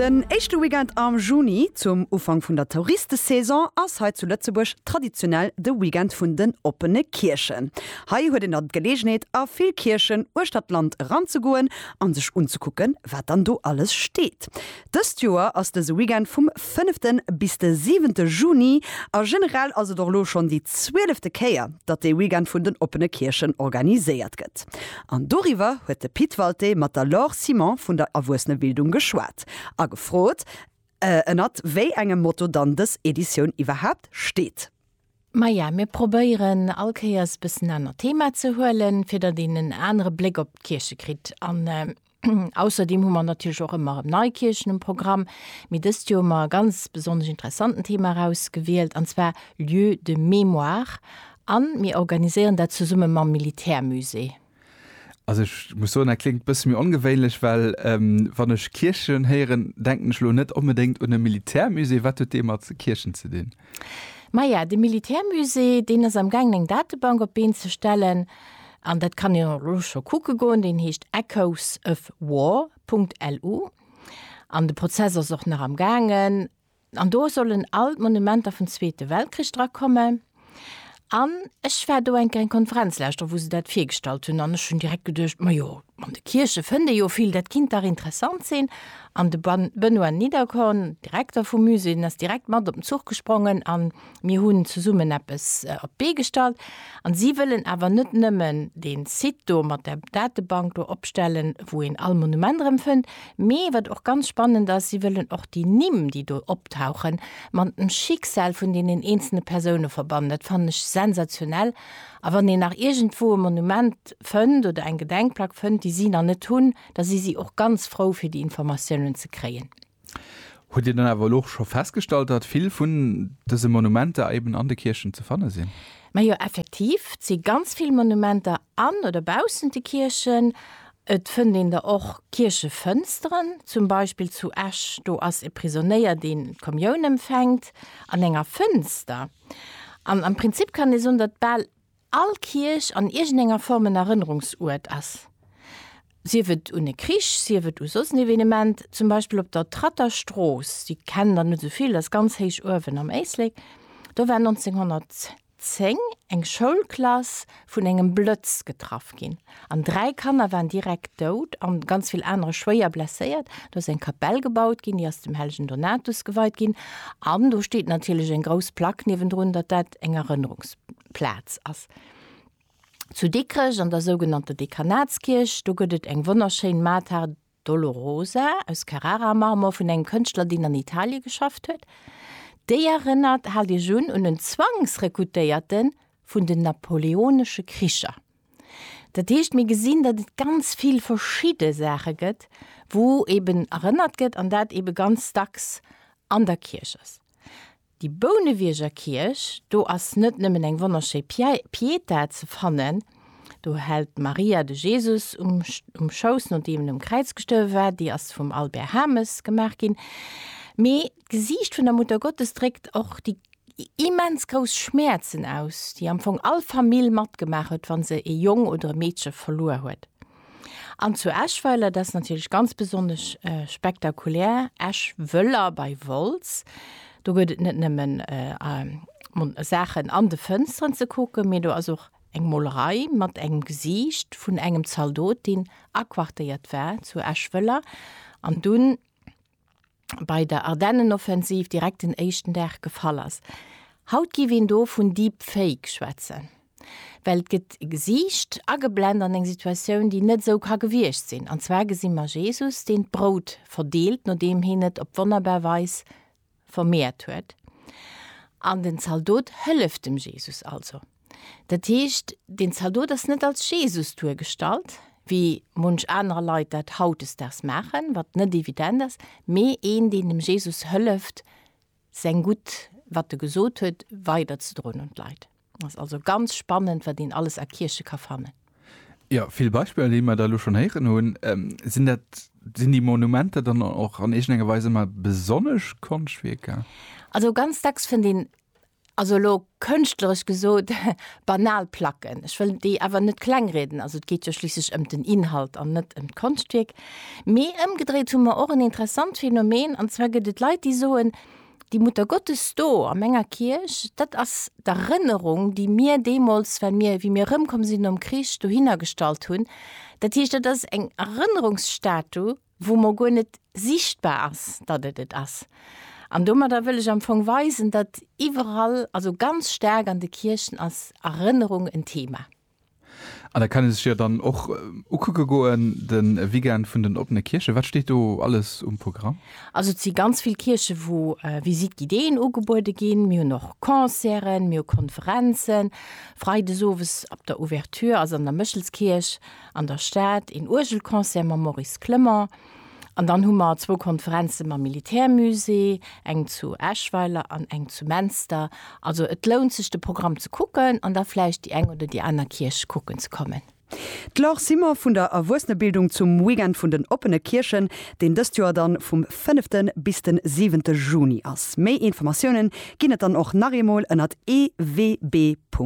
Den éischte Weekend am Juni, zum Ufank vun der Touristesaison, ass hei zu Lëtzebuerg traditionell de Weekend vun den oppene Kierchen. Hei huet een dann d'Geleegenheet a vill Kierchen uechter d'Land eranzegoen a sech unzekucken, wat dann do alles steet. Dëst Joer ass dëse Weekend vum fënnefte bis de siwente Juni a generell ass et och elo schonn déi zwielefte Kéier, datt dee Weekend vun den oppene Kierchen organiséiert gëtt. An doriwwer huet de Pit Walté mat der Laure Simon vun der Erwuessenebildung geschwat a gefrot, ënnert wéi engem Motto dann dës Editioun iwwerhaapt steet. Maja, mir probéieren all Kéiers e bëssen anert Thema ze huelen, fir datt een en anere Bléck op d'Kierche kritt. An Ausserdeem hu mer natierlech och ëmmer erëm nei Kierchen um Programm, mee dëst Joer hu mer e ganz besonnesch interessanten Thema erausgewielt, an zwar Lieux de mémoire, a mir organiséieren dat zesumme mam Militärmusée. Also ech muss soen, dat kléngt e bësse méi ongewéinlech, well wann ech Kierchen héieren, denken ech elo net onbedéngt un e Militärmusée. Wat huet dee mat Kierchen ze dinn? Maja, de Militärmusée, deen ass am gaangen eng Datebank op d'Been ze stellen, an dat kann een och elo scho kucke goen. Deen heescht echoesofwar.lu an de Prozess ass och nach am gaangen. An do sollen all d'Monumenter vum Zweete Weltkrich drakomme. An ech war do eng kleng Konferenz leschter, wou se dat virgestallt hunn, an ech hunn direkt geduecht, majo, an de Kierche fënnt ee jo vill, dat kinnt dach interessant sinn. An de Benoît Niederkorn, Direkter vum Musée, den ass direkt mat op den Zuch gesprongen a mir hunn zesummen eppes op d'Bee gestallt. A si wëllen awer net nëmmen dee Site do mat der Datebank do opstellen, wou een all Monument erëmfënnt, Mee wat och ganz spannend ass, si wëllen och déi Nimm, déi do optauchen, mat dem Schicksal vun deenen eenzelne Persoune verbannen. Dat fannen ech sensationell. A wann een nach iergendwou e Monument fënnt oder eng Gedenkplack fënnt, déi si nach net hunn, da si si och ganz frou, fir déi Informatiounen ze kréien. Hutt Dir dann awer elo och scho festgestallt, datt vill vun dëse Monumenter eben an de Kierchen ze fanne sinn? Majo, effektiv, et si ganz vill Monumenter an oder baussent de Kierchen. Et fënnt een der och Kierchefënsteren, zum Beispill zu Esch, do ass e Prisonéier, deen d'Kommioun empfänkt an enger Fënster. An am Prinzip kann ee soen, datt bal all Kierch an iergendenger Form en Erënnerungsuert ass, sief et un e Krich, sief et u soss en Evenement. Zum Beispill op der Tratter Strooss, déi kennen der net esou vill, ass ganz héich uewen am Éislek, do war 1900, 10 eng Schoulklass vun engem Blëtz getraff ginn an dräi Kanner waren direkt dout an ganz vill anere schwéier blesséiert. Do ass eng Kapell gebaut ginn, déi ass dem hellegen Donatus geweit ginn an do steet natierlech eng grouss Plack niewendrun, datt dat eng Erënnerungsplaz ass. Zu Dikrech an der sougenannter Dekanatskierch, do gëtt et eng wonnerschéin Mater Dolorosa aus Carrara-Marmor vun engem Kënschtler, deen an Italie geschafft huet. Déi erënnert, haalt Iech un, un en Zwangsrekrutéierte vun den napoleonesche Kricher. Dat heescht, mir gesinn, datt et ganz vill verschidde Saache gëtt, wou eeben erënnert gëtt an dat eebe ganz dacks an der Kierch ass. Déi Bounewierger Kierch, do ass net nëmmen eng wonnerschéi Pietà ze fannen, do hält d'Maria de Jesus um Schouss, nodeem en um Kräiz gestuerwe war, déi ass vum Albert Hames gemaach ginn, mee d'Gesiicht vun der Muttergottes dréckt och déi immens grouss Schmäerzen aus, déi am Fong all Famill matgemaach huet, wa se e Jong oder e Meedche verluer huet. An zu Eschweiler, dat ass natierlech ganz besonnesch spektakulär, Eschwëller bei Wolz. Do gëtt et net nëmmen Saachen an de Fënsteren ze kucken, mee do ass och eng Molerei mat engem Gesiicht vun engem Zaldot, deen aquartéiert war zu Eschwëller an dunn, bei der Ardennenoffensiv direkt den éischten Dag gefall ass. Haut giff een do vun Deepfake schwätzen, well et gëtt e Gesiicht ageblend an eng Situatioun, déi net esou ka gewiescht sinn. An zwar gesi mer Jesus, deen d'Brout verdeelt, nodeem heen et op wonnerbar Weis vermeert huet. An den Zaldot hëlleft dem Jesus also. Dat heescht, den Zaldot ass net als Jesus duergestallt, wéi munch anerer Leit dat hautdesdaags maachen, wat net evident ass, mee een, deen dem Jesus hëlleft, säin Gutt, wat e gesot huet, weiderzedroen un d'Leit. Ass also ganz spannend, wat een alles a Kierche ka fannen. Jo, vill Beispiller, déi mer da elo schonn héieren hunn. Sinn dat, sinn déi Monumenter dann och an iergendenger Weis ëmmer besonnesch Konschtwierker? Also ganz dacks fënnt een Also elo kënschtleresch gesot, banal Placken. Ech wëll déi awer net klengrieden, also et geet jo schliisslech ëm den Inhalt an net ëm d'Konschtwierk. Mee ëmgedréit hu mer och en interessant Phänomen, an zwar gëtt et Leit, déi soen, Déi Muttergottes do a menger Kierch, dat ass d'Erënnerung, déi mir deemools, well mir, wéi mir erëmkomm sinn nom Krich, dohinner gestallt hunn. Dat heescht, dat ass eng Erënnerungsstatue. wou mer guer net sichtbar ass, datt et et ass. An domadder wëll ech am Fong weisen, datt iwwerall, also ganz staark an de Kierchen, ass Erënnerung en Thema. An dat kann ee sech jo dann och ukucke goen, de Weekend vun den oppene Kierche. Wat steet do alles um Programm? Also et si ganz vill Kierche wou Visite guidéeën ugebuede ginn. Mir hunn och Concerten, mir hu Konferenzen. Freides owes op der Ouverture ass an der Méchelskierch an der Stad, een Uergelconcert mam Maurice Clement an dann hu mer zwou Konferenze mam Militärmusée, eng zu Eschweiler an eng zu Menster. Also et lount sech de Programm ze kucken an da vläicht déi eng oder déi aner Kierch kucken ze kommen. D'Laure Simon vun der Erwuessenebildung zum Weekend vun den oppene Kierchen, deen dëst Joer dann vum fënnefte bis de siwente Juni ass. Méi Informatiounen ginn et dann och nach eemol ënnert ewb.lu.